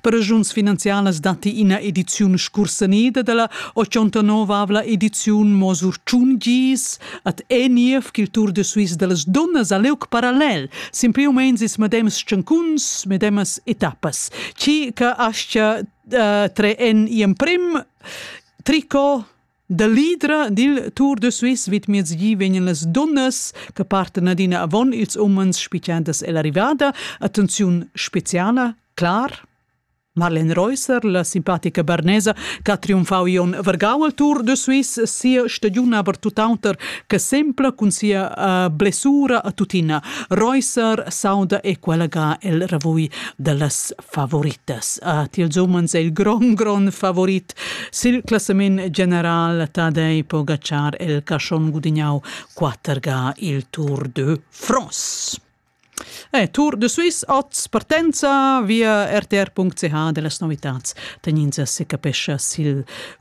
Per regiuns finanzialas datti ina ediziun scursanida dalla 89 ediziun Mo sur tschun gis ad Eniev ch'il Tour de Suisse dallas dunnas ha liug parallel, sin più u meins ils medems tschancuns, medemas etappas. Chi che aschia uh, tre en i emprim tricot Da l'idra dil Tour de Suisse vidmiezgi vegnan las dunnas che partan adina avon ils umens spigiandas ell'arrivada. Attenziun speciala, clar. Marlene Reusser, la simpatica barnesa che ha triumfau Ion Vergau al Tour de Suisse, sia stagiun aber tuttauter che sempla cun sia uh, blessura a tuttina. Reusser sauda e quella ga el ravui dallas favoritas. A tils umens è il gron gron favorit. Sil classament general Tadei Pogacar el caschon gudignau 4 ga il Tour de France. Eh, Tour de Suisse, oz partenza via rtr.ch dellas novitats. Tegnins se capescha sil